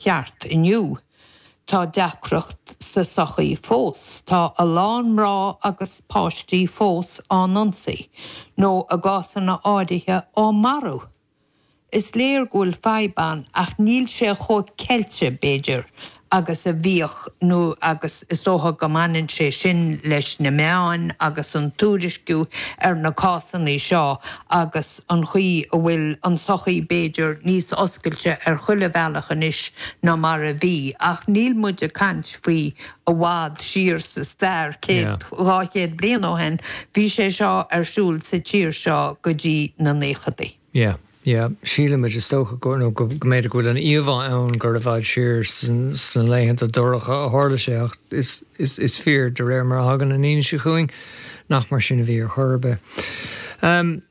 cheart inniu. Tá deacracht sa tsochaí fós, tá a lán mná agus páistí fós á n-ionsaí nó i gcásanna áirithe á marú. Is léir go bhfuil fadhb ann ach níl sé chomh ceilte, b'fhéidir, agus a bhíodh agus is dócha go mbaineann sé sin leis na meáin agus an tuairisciú ar na cásanna seo agus an chaoi a bhfuil an tsochaí b'fhéidir níos oscailte ar chuile bhealach anois ná mar a bhí, ach níl muid ag caint faoi i bhfad siar sa stair, céad, dhá chéad bliain ó shin, bhí sé seo ar siúl sa tír seo go dtí na naochadaí. Yeah, yeah. Síleann muid, is dócha, go, nó go, go mb'fhéidir go bhfuil an íomhá ann gur i bhfad siar sna laethanta dorcha a tharla sé ach is, Is fíor, de réir mar a thagann an fhianaise chugainn, nach mar sin a bhí ar chor ar bith.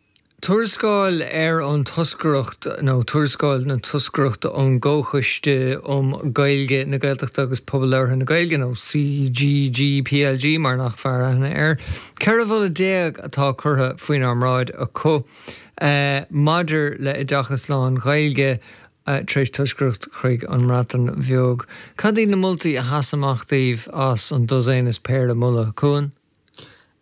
Tuarascáil ar an Toscaireacht nó Tuarascáil na Toscaireachta ón gComhchoiste um Ghaeilge, na Gaeltachta agus Pobal Labhartha na Gaeilge, nó CGGPLG mar nach fearr aithne air. 14 mholadh atá curtha faoinár mbráid acu maidir le oideachas lán-Ghaeilge tar éis toscaireacht chuig an mBreatain Bheag, cad iad na moltaí a sheas amach daoibh as an dosaen is péire moladh? Cuan.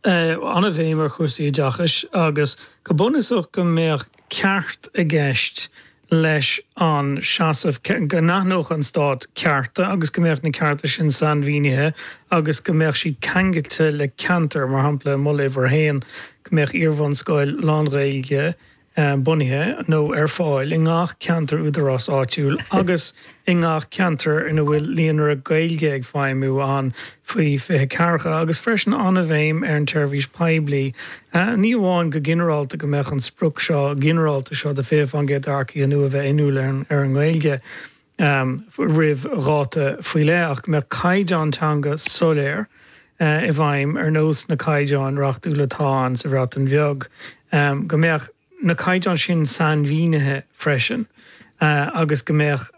an-bhéim ar chúrsaí oideachais agus go bunúsach go mbeadh ceart i gceist leis an seasamh, go n-aithneodh an Stát cearta agus go mbeadh na cearta sin sainmhínithe agus go mbeadh siad ceangailte le ceantar. Mar shampla, moladh uimhir 1, go mbeadh iarbhunscoil lán-Ghaeilge bunaithe nó ar fáil i ngach ceantar údaráis áitiúil agus i ngach ceantar ina bhfuil líonra Gaeilge ag feidhmiú ann faoi 2040 agus freisin an-bhéim ar an tseirbhís phoiblí. Ní amháin go ginearálta go mbeadh an sprioc seo ginearálta seo de 20% d'earcaithe nua a bheith inniúil ar an nGaeilge, roimh dháta faoi leith ach go mbeadh caighdeán teanga soiléir i bhfeidhm, ar nós na gcaighdeán reachtúil atá ann sa Bhreatain Bheag, go mbeadh na caighdeáin sin sainmhínithe freisin agus go mbeadh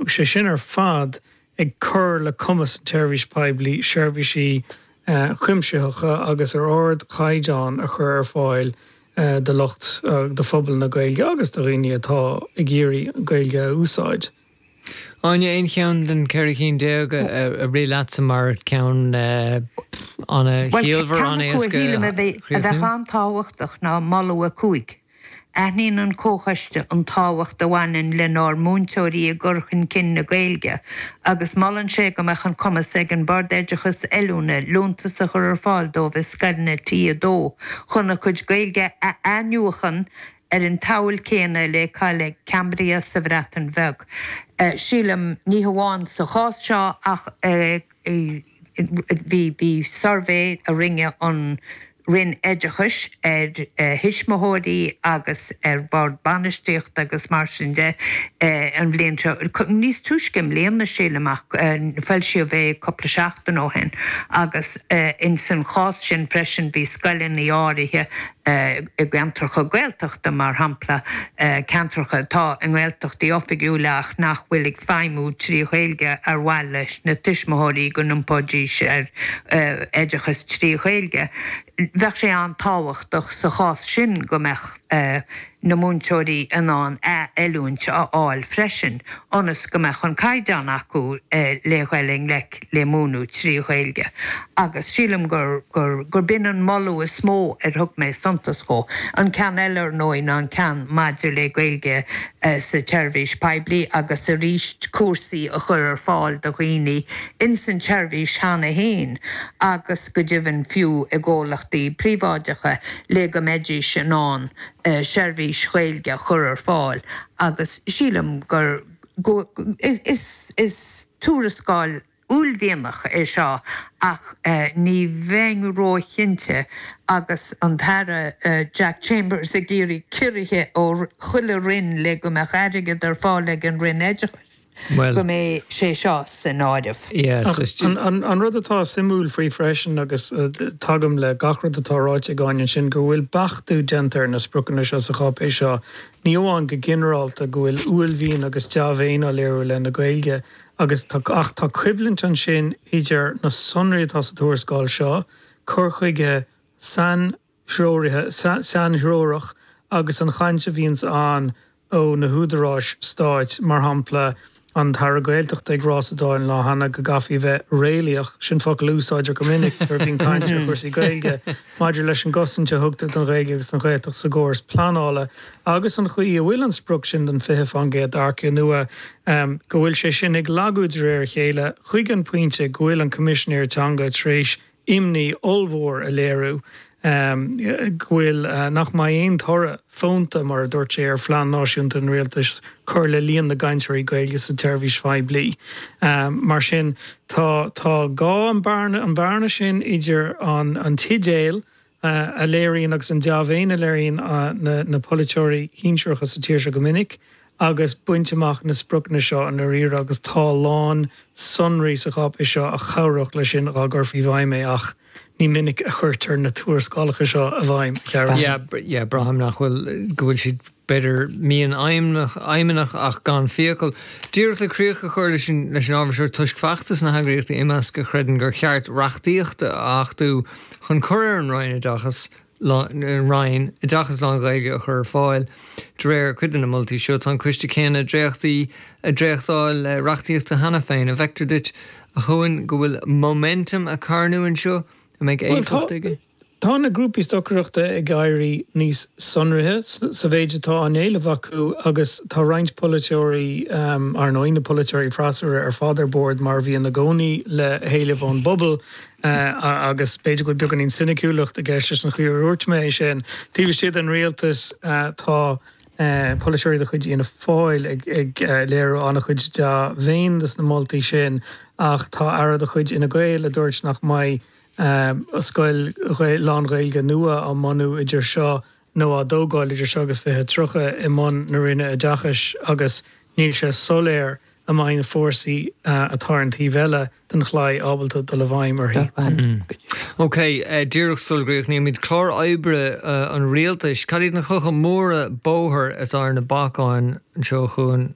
sé sin ar fad ag cur le cumas an tseirbhís phoiblí seirbhísí a cuimsitheacha agus ar ardchaighdeán a chur ar fáil do lucht, do phobal na Gaeilge agus do dhaoine atá ag iarraidh Gaeilge a úsáid. Áine, Aon cheann den cheithre cinn déag a rith leatsa mar cheann an-chiallmhar, an-éasca a chríochnú? Bhuel, ceann acu a shílim a bheadh an-tábhachtach ná Moladh 5. Aithníonn an Comhchoiste an tábhacht a bhaineann lenár múinteoirí i gcur chun cinn na Gaeilge agus molann sé go mbeadh an cumas ag an mBord Oideachais Oiliúna liúntas a chur ar fáil dóibh i scoileanna T2 chun a gcuid Gaeilge a athnuachan ar an tsamhail céanna le Coleg Cambria sa Bhreatain Bheag. Sílim, ní hamháin sa chás seo ach i. Bhí suirbhé a rinne an Roinn Oideachais ar thuismitheoirí agus ar Bhord Bainistíochta agus mar sin de an bhliain seo, níos túisce i mbliana sílim ach foilsíodh é cúpla seachtain ó shin, agus ins an chás sin freisin bhí scoileanna áirithe i gceantracha Gaeltachta, mar shampla ceantracha atá i nGaeltachtaí oifigiúla ach nach bhfuil ag feidhmiú trí Ghaeilge ar mhaith leis na tuismitheoirí go n-iompóidís ar oideachas trí Ghaeilge. Bheadh sé an-tábhachtach sa chás sin go mbeadh. na múinteoirí in ann athoiliúint a fháil freisin ionas go mbeadh an caighdeán acu le dhul i ngleic le múineadh trí Ghaeilge agus sílim gur gur gur b'in an moladh is mó ar thug mé suntas dhó. An ceann eile, ar ndóigh, ná an ceann maidir le Gaeilge sa tseirbhís poiblí agus arís cúrsaí a chur ar fáil do dhaoine ins an tseirbhís cheana fhéin agus go deimhin fiú i gcomhlachtaí príobháideacha le go mbeidís in ann seirbhís Ghaeilge a chur ar fáil agus sílim gur is tuarascáil uaillmhianach é seo ach ní bheinn róchinnte agus an tAire Jack Chambers ag iarraidh ciorruithe ó chuile roinn le go mbeadh airgead ar fáil ag an Roinn Oideachais. go mbeidh sé seo san áireamh. An rud atá suimiúil faoi freisin, agus tagaim le gach rud atá ráite ag Áine ansin, go bhfuil beachtú déanta ar na spriocanna seo sa cháipéis seo. Ní amháin go ginearálta go bhfuil uaillmhian agus deá-mhéin á léiriú i leith na Gaeilge agus ach tá coimhlint ansin idir na sonraí atá sa tuarascáil seo, cur chuige sain, threoraithe, sainthreorach agus an chaint a bhíonns ann ó na húdaráis stáit, mar shampla an tAire Gaeltachta ag rá sa Dáil an lá cheana go gcaithfí a bheith 'réalaíoch', sin focal a úsáidtear go minic nuair a bhíonn caint ar chúrsaí Gaeilge, maidir leis an gcosaint a thugtar don Ghaeilge agus don Ghaeltacht sa gcóras pleanála agus an chaoi a bhfuil an sprioc sin den 20 fán gcéad d'earcaigh nua, go bhfuil sé sin ag lagú de réir a chéile, chuig an bpointe go bhfuil an Coimisinéir Teanga tar éis imní ollmhór a léiriú go bhfuil, nach mbeidh aon toradh fónta, mar a dúirt sé, ar phlean náisiúnta an Rialtais chun cur le líon na gcainteoirí Gaeilge sa tseirbhís phoiblí. Mar sin, tá gá an bhearna sin idir an t-idéal a léiríonn agus an dea-mhéin a léiríonn na polaiteoirí sinsearacha sa tír seo go minic agus baint amach na spriocanna seo i ndáiríre agus tá a lán sonraí sa cháipéis seo a chabhródh leis sin dá gcuirfí i bhfeidhm é ach ní minic a chuirtear na tuarascálacha seo i bhfeidhm, a Chiaráin. Yeah, yeah, braithim nach bhfuil, go bhfuil siad b'fhéidir mianaidhmeannach ach gan fiacail, díreach le críoch a chur leis an ábhar seo toisc feachtas na heagraíochta Imeasc a chreideann gur cheart reachtaíocht a achtú chun cur ar an Roinn Oideachais Roinn oideachas lán-Ghaeilge a chur ar fáil de réir cuid de na moltaí seo. Tá an coiste céanna dréachtaí ag dréachtáil reachtaíochta cheana féin an bhfeictear duit a Choinn go bhfuil momentum ag carnadh anseo a mbeidh éifeacht aige. Tá na grúpaí stocaireachta ag éirí níos sonraithe sa mhéid atá á n-éileamh acu agus tá roinnt polaiteoirí, ar ndóigh, na polaiteoirí freasúra, ar fad ar bord, mar a bhíonn i gcónaí, le héilimh ón bpobal agus b'fhéidir go bhfuil beagáinín soiniciúlachta i gceist leis an chaoi ar dhúirt mé é sin. Taobh istigh den rialtas tá polaiteoirí de chuid Fhianna Fáil ag léiriú an-chuid dea-mhéin dos na moltaí sin ach tá aire de chuid Fhine Gael a dúirt nach mbeidh aon scoil lán-Ghaeilge nua á mbunú idir seo nó á dtógáil idir seo agus 2030 i mbun na Roinne Oideachais agus níl sé soiléir an mbeidh na fórsaí atá ar an taobh eile den chlaí ábalta dul i bhfeidhm uirthi. OK, díreach sula gcríochnaímid clár oibre an rialtais, cad iad na clocha móra bóthair atá ar na bacáin anseo chugainn?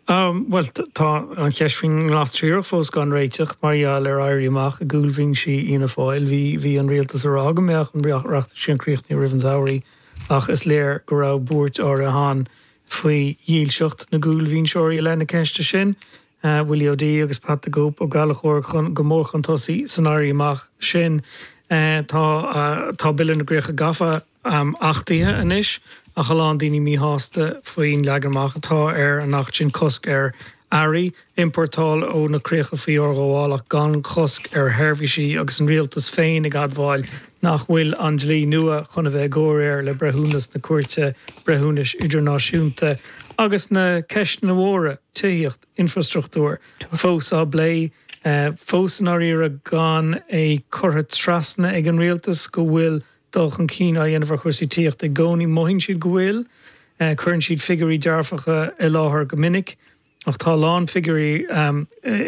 Bhuel, tá an cheist faoin nGlas Triarach fós gan réiteach mar gheall ar éirí amach i gcúlbhinsí Fhianna Fáil. Bhí an rialtas ag rá go mbeadh an reachtaíocht sin críochnaithe roimh an samhradh ach is léir go raibh buairt áirithe ann faoi dhílseacht na gcúlbhinseoirí i leith na ceiste sin, Willie O'Dea agus Pat 'The Cope' Ó Gallchóir go mór chun tosaigh san éirí amach sin. Tá Bille na gCríoch Gafa, am achtaithe anois ach a lán daoine míshásta faoin leagan amach atá ar an acht sin, cosc ar earraí a importáil ó na críocha faoi fhorghabháil ach gan cosc ar sheirbhísí agus an Rialtas féin ag admháil nach bhfuil an dlí nua chun a bheith i gcomhréir le breithiúnas na Cúirte Breithiúnais Idirnáisiúnta agus na ceisteanna móra, tithíocht, infreastruchtúr, fós á bplé. Fós i ndáiríre gan é curtha trasna ag an Rialtas go bhfuil dul chun cinn á dhéanamh ar chúrsaí tithíochta i gcónaí. Mothaíonn siad go bhfuil. Cuireann siad figiúirí dearfacha i láthair go minic ach tá a lán figiúirí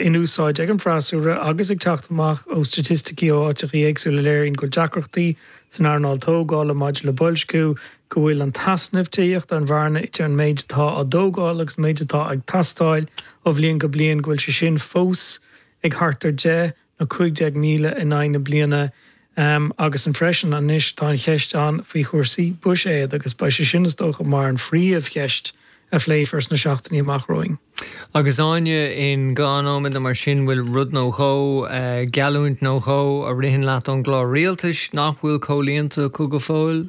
in úsáid ag an bhfreasúra agus ag teacht amach ó staitisticí ó áiteachaí éagsúla a léiríonn go bhfuil deacrachtaí san earnáil tógála maidir le boilsciú, go bhfuil an t-easnamh tithíochta, an bhearna idir an méid atá á thógáil agus an méid atá ag teastáil ó bhliain go bliain, go bhfuil sé sin fós ag thart ar 10. nó 15,000 in aghaidh na bliana agus ansin freisin anois tá an cheist ann faoi chúrsaí buiséid agus beidh sé sin is dócha mar an phríomh cheist a phléifear sna seachtainí amach romhainn. Agus Áine i ngan nóiméad nó mar sin bhfuil rud nó dhó, geallúint nó dhó a ritheann leat ón gclár rialtais nach bhfuil comhlíonta acu go fóill?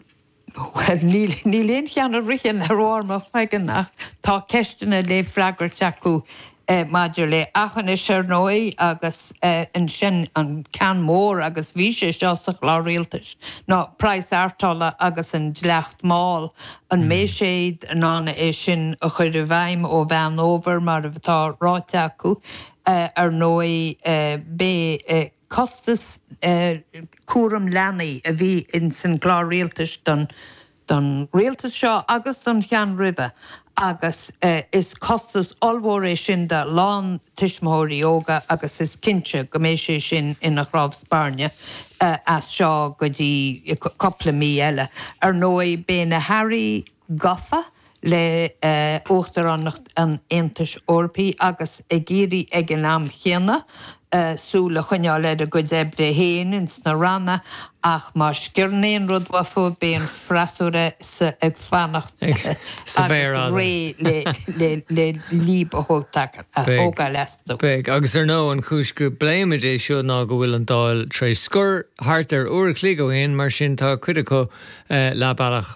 Bhuel, níl aon cheann a ritheann ar bharr mo chloigeann ach tá ceisteanna le freagairt acu maidir le hAchinis, ar ndóigh, agus ansin an ceann mór, agus bhí sé seo sa Chlár Rialtais, ná praghas ártola agus an dleacht máil, an mbeidh siad in ann é sin a chur i bhfeidhm ó Mheán Fhómhair mar atá ráite acu. Ar ndóigh, beidh. costas cúraim leanaí a bhí ins an gClár Rialtais don Rialtas seo agus don cheann roimhe agus is costas ollmhór é sin do a lán tuismitheoirí óga agus is cinnte go mbeidh sé sin ina chnámh spairne as seo go dtí cupla mí eile. Ar ndóigh, beidh na hAirí gafa le hUachtaránacht an Aontais Eorpaigh agus ag iarraidh ag an am céanna súil a choinneáil ar a gcuid oibre féin ins na Ranna ach má sciorrann aon rud uathu beidh an freasúra ag fanacht sa bhféar fhada agus réidh le léab a thógáil astu. Beidh, agus ar ndóigh an chúis go bpléimid é seo ná go bhfuil an Dáil tar éis scor thart ar uair a chloig ó shin, mar sin tá cuid acu leath bealach.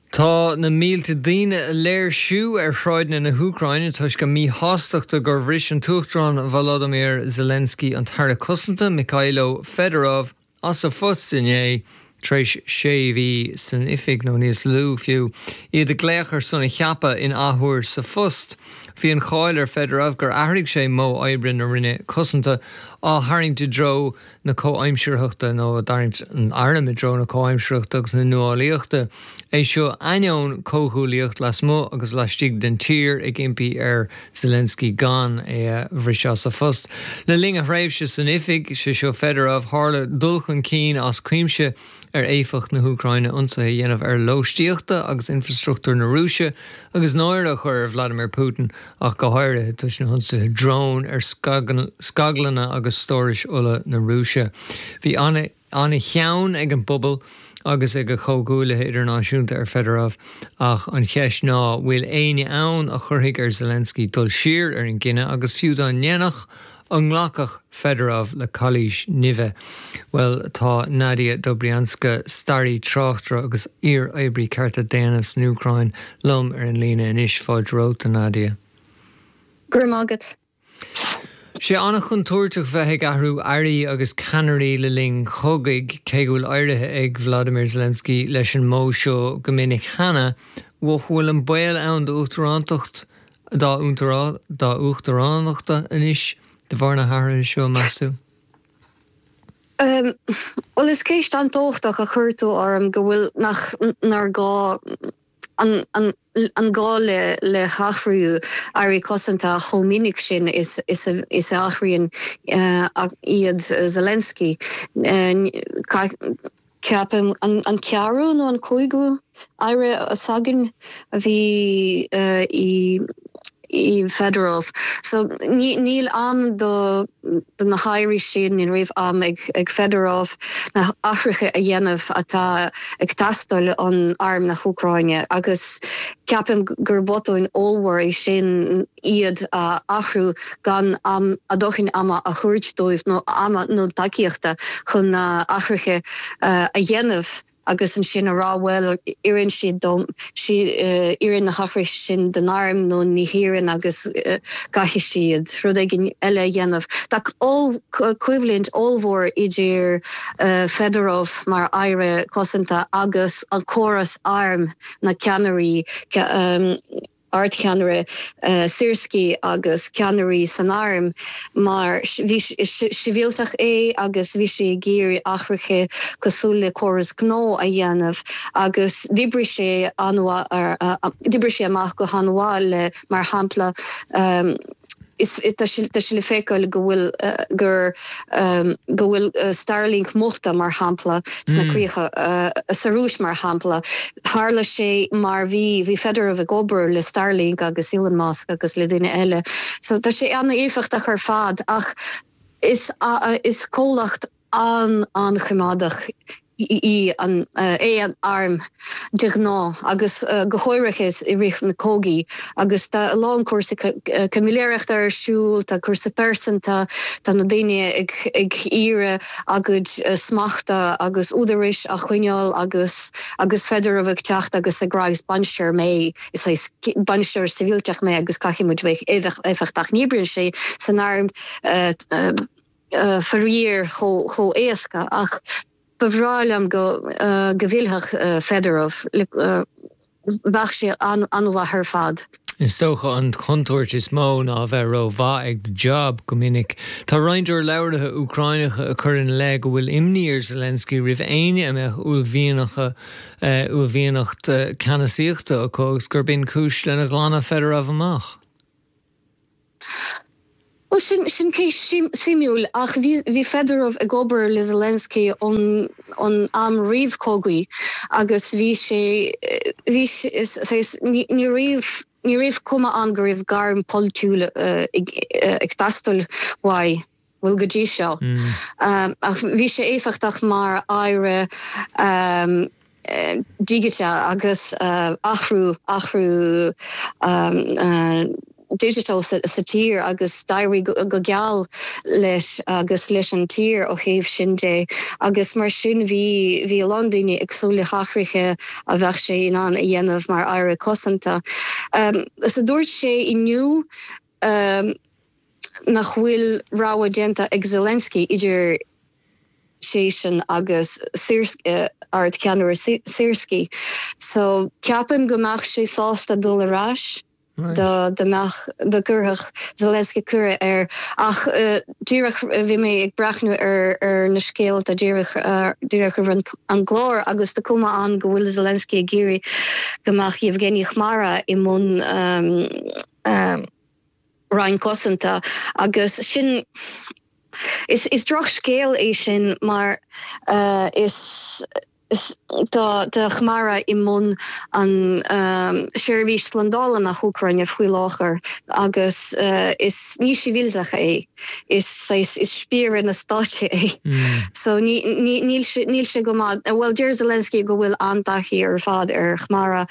Tá na mílte daoine ag léirsiú ar shráideanna na hÚcráine toisc a míshástachta gur bhris an tUachtarán Volodymyr Zelensky an tAire Cosanta, Mykhailo Fedorov, as a phost inné, tar éis sé mhí san oifig, nó níos lú fiú, iad ag glaoch ar son a cheaptha in athuair sa phost. Bhí an cháil ar Fedorov gur athraigh sé modh oibre na Roinne Cosanta, á tharraingt i dtreo, na comhaimsearthachta nó ag tarraingt an airm i dtreo na comhaimsearthachta agus na nuálaíochta. É seo ainneoin comhghuaillíocht lasmuigh agus laistigh den tír ag impí ar Zelensky gan é a bhriseadh as a phost. Le linn a thréimhse san oifig, sé seo Fedorov, tharla dul chun cinn as cuimse ar éifeacht na hÚcráine, ionsaithe a dhéanamh ar lóistíochta agus infrastruchtúr na Rúise agus náire a chur ar Vladimir Putin, ach go háirithe toisc na hionsaithe drón ar scaglanna agus stórais ola na Rúise. Bhí an-chion ag an bpobal agus ag a chomhghuaillithe idirnáisiúnta ar Fedorov, ach an cheist ná, bhfuil éinne ann a chuirfidh ar Zelensky dul siar ar an gcinneadh agus fiú dá ndéanfadh, An nglacfadh Fedorov le cailís nimhe? Bhuel, tá Nadia Dobrianska, staraí, tráchtaire agus iar-oibrí cearta daonna san Úcráin, liom ar an líne anois. Fáilte romhat, a Nadia. Go raibh maith agat. Is é an-chontúirteach bheith ag athrú airí agus ceannairí le linn cogaidh, cé go bhfuil éirithe ag Vlodymyr Zelensky leis an modh seo go minic cheana, an bhfuil an baol ann d'uachtarántacht dá uachtaránacht anois de bharr na hathruithe seo, meas tú? Bhuel, is ceist an-tábhachtach a chuir tú orm, go bhfuil, nach, nár gá an, an, an gá le, le hathrú Airí Cosanta chomh minic sin is, is a, is a athraíonn iad Zelensky. Ceapaim an ceathrú nó an cúigiú aire s'againn a bhí i Fedorov so níl am do na hairí sin, ní raibh am ag Fedorov na hathruithe a dhéanamh atá ag teastáil ón arm na hÚcráine agus ceapaim gur botún ollmhór é sin. iad a athrú gan am, dóthain ama a thabhairt dóibh nó ama nó tacaíochta chun na hathruithe a dhéanamh agus ansin a rá bhuel oireann siad dom, oireann na hathruithe sin don arm nó ní oireann agus caithfidh siad rud éigin eile a dhéanamh. Tá coimhlint ollmhór idir Fedorov mar aire cosanta agus an córas airm, na ceannairí. Ardcheannaire Syrskyi agus ceannairí san arm mar bhí sibhialtach é agus bhí sé ag iarraidh athruithe cosúil le córas gnó a dhéanamh agus d'oibrigh sé an-mhaith, d'oibrigh sé amach go han-mhaith le, mar shampla, Is tá sé le feiceáil go bhfuil gur go bhfuil Starlink múchta, mar shampla, sna críocha. Sa Rúis, mar shampla, tharla sé mar bhí bhí Fedorov ag obair le Starlink agus Elon Musk agus le daoine eile. So tá sé an-éifeachtach ar fad ach is is comhlacht. an-choimeádach é an arm de ghnáth agus go háirithe i rith na cogaí agus tá a lán cúrsaí caimiléireachta ar siúl, tá cúrsaí pearsanta, tá na daoine ag iarraidh a gcuid smachta agus údarais a choinneáil agus agus Fedorov ag teacht agus ag rá is bainisteoir mé, is saghas bainisteoir sibhialtach mé agus caithfidh muid bheith éifeachtach, ní oibríonn sé san arm. faraor chomh héasca ach ba bhreá liom go bhfillfeadh Fedorov, bheadh sé an-mhaith ar fad. Is dócha an chontúirt is mó ná a bheith rómhaith ag do jab, go minic. Tá roinnt urlabhraithe Úcráineacha ag cur ina leith go bhfuil imní ar Zelensky roimh éinne a mbeadh uaillmhianacht ceannasaíochta acu agus gurb in cúis lenar glanadh Fedorov amach. Bhuel, sin, sin ceist shuimiúil ach bhí, bhí Fedorov ag obair le Zelensky ón, ón am réamhchogaidh agus bhí sé, bhí sé, ní, ní raibh, ní raibh cuma ann go raibh gairm pholaitiúil ag teastáil uaidh. bhfuil go dtí seo. Ach bhí sé éifeachtach mar aire digiteach agus athrú athrú digiteach sa tír agus d'éirigh go geal leis agus leis an tír ó thaobh sin de agus mar sin bhí bhí a lán daoine ag súil le hathruithe a bheadh sé in ann a dhéanamh mar aire cosanta. Is dúirt sé inniu nach bhfuil rogha déanta ag Zelensky idir seisean agus Syrskyi, Ard-Cheannaire Syrskyi. So, ceapaim go mbeadh sé sásta dul ar ais dá mbeadh, dá gcuirfeadh Zelensky cuireadh air. Ach díreach bhí mé ag breathnú ar na scéalta díreach roimh an gclár agus tá cuma ann go bhfuil Zelensky ag iarraidh go mbeadh Yevgeny Khmara i mbun Roinn Cosanta agus sin is drochscéal é sin mar tá Khmara i mbun an seirbhís slandála na hÚcráine faoi láthair agus is ní sibhialtach é. is saghas is spiaire na stáite é so ní níl sé níl sé go maith bhuel deir Zelensky go bhfuil an-taithí ar fad ar Khmara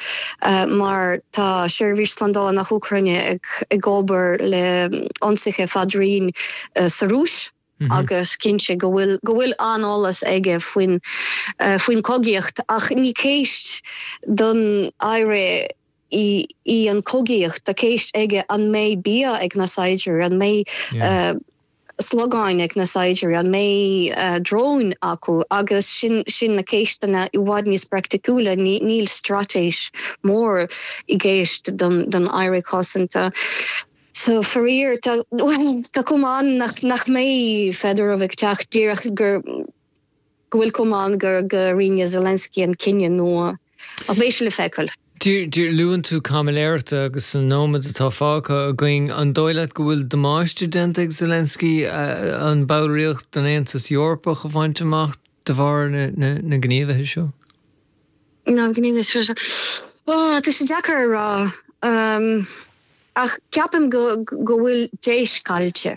mar tá seirbhís slándála na hÚcráine ag ag obair le hionsaithe fadraoin sa Rúis agus cinnte go bhfuil go bhfuil an-eolas aige faoin faoin cogaíocht ach ní ceist don aire í an cogaíocht, tá ceist aige an mbeidh bia ag na saighdiúirí, an mbeidh slogáin ag na saighdiúirí, an mbeidh dróin acu agus sin na ceisteanna i bhfad níos praiticiúla, níl straitéis mhór i gceist don Aire Cosanta. So faraor tá cuma ann nach mbeidh Fedorov ag teacht díreach go go bhfuil Khmara, go rinne Zelensky an cinneadh nua ach beidh sé le feiceáil. Deir, deir, luann tú caimiléireacht agus sa nóiméad atá fágtha againn, an dóigh leat go bhfuil damáiste déanta ag Zelensky don bhallraíocht den Aontas Eorpach a bhaint amach de bharr na gníomhaithe seo? Na gníomhaithe seo, ó tá sé deacair a rá ach ceapaim go go bhfuil deis caillte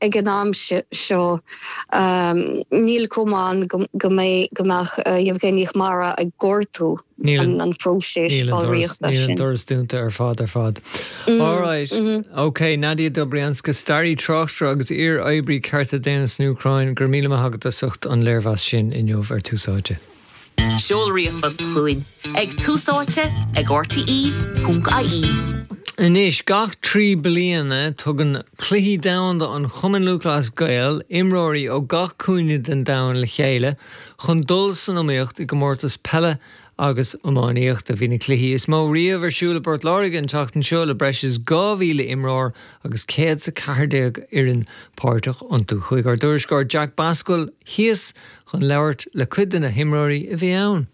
Ag an am seo, níl Khmara, go mbeadh Yevgeny Khmara ag gortú an próiseas ballraíochta sin. Níl an doras dúnta ar fad, ar fad. Alright, ok, Nadia Dobrianska, staraí tráchtaire agus iar-oibrí cearta daonna san Úcráin, go raibh míle maith agat as ucht an léirmheas sin inniu ar Tús Áite. Seol ríomhphost chugainn ag Tús Áite ag RTÉ.ie. Anois gach trí bliana, tugann Cluichí Domhanda an Chumainn Lúthchleas Gael imreoirí ó gach cúinne den domhan le chéile chun dul san iomaíocht i gcomórtas peile agus iománaíochta. Bhí na cluichí is mó riamh ar siúl i bPort Láirge an tseachtain seo le breis is 2,000 imreoir agus 114 fhoireann páirteach iontu. Chuaigh ár dtuairisceoir Jack Basquel síos chun labhairt le cuid de na himreoirí a bhí ann.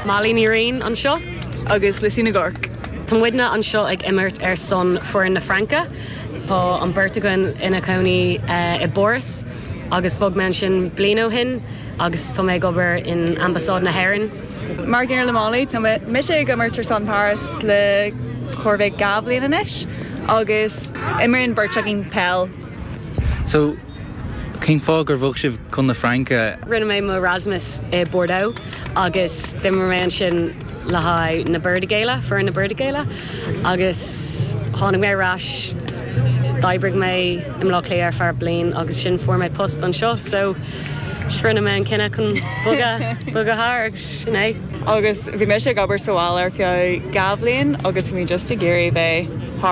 Molly Ní Riain anseo agus Lucy Nig Oirc. Tá muidne anseo ag imirt ar son foireann na Fraince, Tá an beirt againn inár gcónaí i bPáras agus bhog mé ansin bliain ó shin agus tá mé ag obair in Ambasáid na hÉireann. Mar an gcéanna le Molly, tá mise ag imirt ar son Paris le chóir a bheith dhá bhliain anois agus imríonn beirt againn peil. So, cén fáth gur bhog sibh chun na Fraince? Rinne mé mo Erasmus i Bordeaux agus d'imir mé ansin le haghaidh na Burdigaela, foireann na Burdigaela agus tháinig mé ar ais, d'oibrigh mé i mBlá Cliath ar feadh bliain agus ansin fuair mé post anseo so, So rinne mé an cinneadh chun bogadh, bogadh thar agus sin é. Agus bhí mise ag obair sa bhaile ar feadh dhá bhliain agus bhí mé just ag iarraidh bheith thar